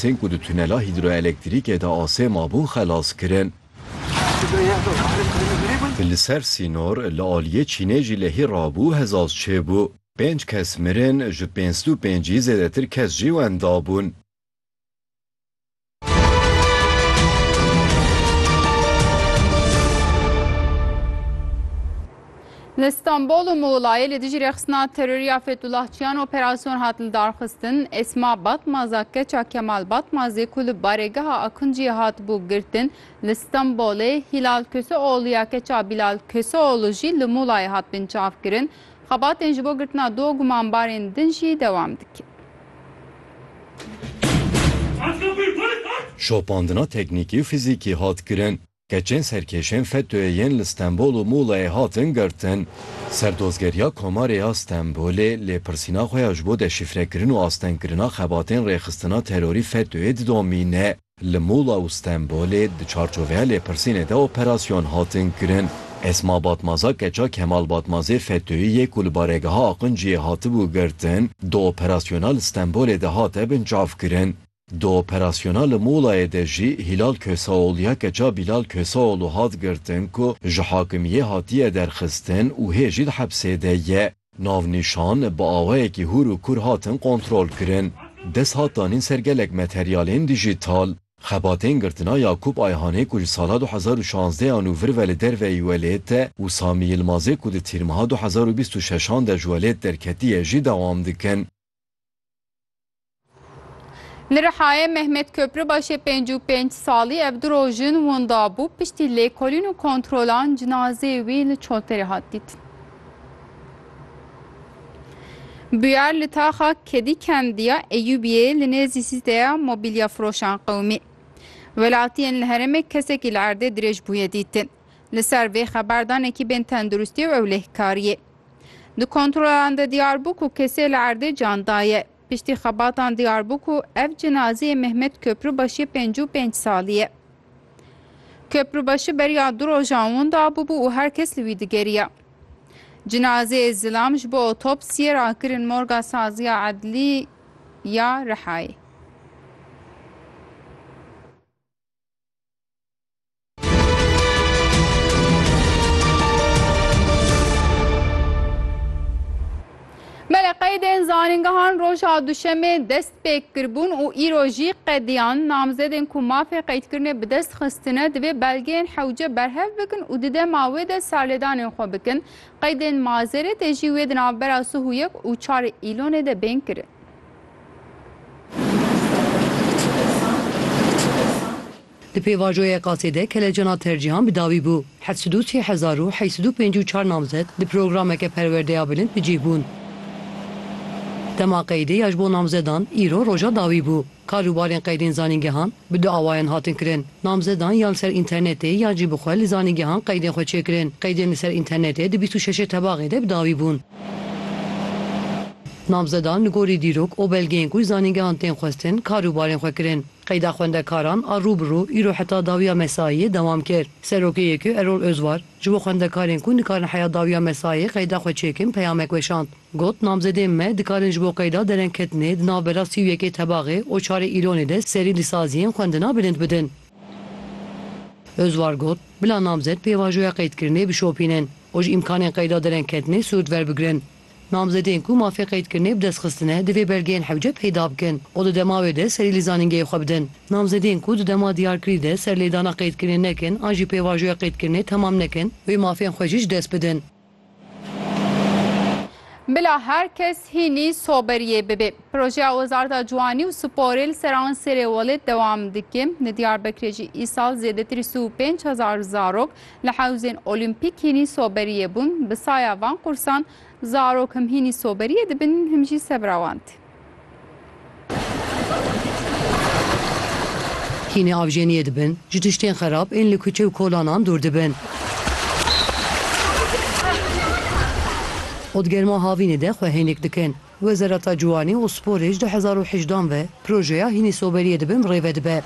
Tên ku di tunela hîdroelektrîkê de asê mabûn xelas kirin. Di li ser sînor li aliyê Çînê jî lehî rabû hezaz çêbû. Pênc kes mirin, ji pênc sed û pêncî zêdetir kes jî wenda bûn. Li Stenbol û Muğlayê li dijî rêxistina terorî ya Fethullah Çiyan operasyon hat lidarxistin. Esma Batmaza keça Kemal Batmazê ku li barêgeha Akunciyê hatibû girtin li Stenbolê, Hilal Köseoğlu ya keça Bilal Köseoğlu jî li Muğlayê hat binçavkirin. Xebatên ji bo girtina du gumanbarên din jî dewam dikin. Şopandina teknîkî û fîzîkî hat kirin. Keçên serkêşên FETÖ'yê yên li Stenbol û Muğla'yê hatin girtin, Serdozgeriya Komarê ya Stenbolê lêpirsîna xwe ya ji bo deşîfrekirin û astengkirina xebatên rêxistina terorî FETÖ'yê didomîne. Li Muğla û Stenbolê di çarçoveya lêpirsînê de operasyon hatin kirin. Esma Batmaza keça Kemal Batmazê FETÖ'yî yê ku li Baregeha Aqinciyê hatibû girtin, di operasyona li Stenbolê de hate binçavkirin. Di operasyona li Mulayê de jî Hîlal Köseoğlu ya keça Bîlal Köseoğlu hat girtin ku ji hakimiyê hatiye derxistin û hê jî di hepsê de ye. Navnîşan bi awayekî hûr û kûr hatin kontrolkirin. Dest hat danîn ser gelek materyalên dîjîtal. Xebatên girtina Yakûp Ayhanê ku ji sala du hezar û şazdeh an û vir ve li derveyî welêt e û Samî Yilmazê ku di tîrmiha du hezar û bîst û şeş an de ji welêt derketiye jî dewam dikin. Li Rihayê Mehmet Köprübaşê pênc û pênc salî ev du roj in winda bû, piştî lêkolîn û kontrolan cinazeyê wî li Çolterê hat dîtin. Buyar li taxa Kedî Kendiya Eyûbiyê li nêzî sîteya mobîlya firoşan qewimî. Welatiyên li herêmê kesekî li erdê dirêj bûye dîtin. Li ser vê xeberdanekî bên tenduristiyê û ewlehkariyê. Di kontrolan de diyar bû ku kesê li erdê can daye. Piştî xebatan diyar bû ku ev cinazeyê Mehmet Köprübaşî pêncî û pênc salî ye. Köprübaşî beriya du rojan winda bûbû û her kes li wî digeriya. Cinazeyê zilam ji bo otopsiyê rakirin morga Saziya Edlî ya Rihayê. Belê qeydên zanîngehan roja Duşemê dest pêk kiribûn û îro jî qediyan namzedên ku mafê qeydkirinê bi dest xistine divê belgeyên hewce berhev bikin û di dema wê de serlêdanên xwe bikin. Qeydên Mazêrê tê jî wê di navbera sih û yek û çar Îlonê de bên kirin. Di pêvajoyê qasê de kelecana tercîhan bi dawî bû. Heft sed û sê hezar û heyt sed û pêncî û çar namzet di programeke perwerdeya bilind bi cih bûn. Dema qeydê ya ji bo namzedan îro roja dawî bû. Karûbarên qeydên zanîngehan bi du awayan hatin kirin. Namzedan yan li ser înternetê yan jî bi xwe li zanîngehan qeydên xwe çêkirin. Qeydên li ser înternetê di bîst û şeşê tebaxê de bi dawî bûn. Namzedan li gorî dîrok û belgeyên ku ji zanîngehan tên xwestin karûbarên xwe kirin. Qeyda xwendekaran a rûbirû îro heta dawiya mesayî dewam kir. Serokê YKU Erol Ozvar ji bo xwendekarên ku nikarin heya dawiya mesayê qeyda xwe çêkin peyamek weşand. Got, Namzedên me dikarin ji bo qeyda derengketinê di navbera sî û yekê tebaxê û çarê îlonê de serî li saziyên xwendina bilind bidin. Ozvar got, Bila namzed pêvajoya qeydkirinê bişopînin û ji îmkanên qeyda derengketinê sûrt verbigrin. Namzedên ku mafê qeydkirinê bi dest xistine divê belgeyên hewce peyda bikin û di dema wê de serî li zanîngehê xwe bidin. Namzedên ku di dema diyarkirî de serlêdana qeydkirinê nekin an jî pêvajoya qeydkirinê temam nekin, wê mafên xwe jî ji dest bidin. Bila her kes hînî soberiyê bibê. Projeya Wezareta Ciwanî û Sporê li Seransêrê welêt dewam dike. Li Diyarbekirê jî îsal zêdetirî sî û pênc hezar zarok, Li hewzên olîmpîk hînî soberiyê bûn, bi saya van qursan zarok him hînî soberiyê dibin him jî sebra wan tê. Hînî avjeniyê dibin, ji tiştên xerab ên li kuçe û kolanan dûr dibin. Ot germa havînê de xwe hênik dikin. Wezareta Ciwanî û Sporê ji du hezar û hejdeh an ve projeya hînî soberiyê di bin birêve dibe.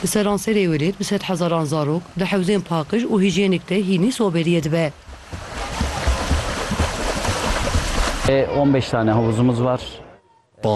Li seranserê Wêlê bi sed hezaran zarok di hewzên paqij û hîjyênîk de hînî soberiyê dibe. Ê on beş tane havuzumuz var.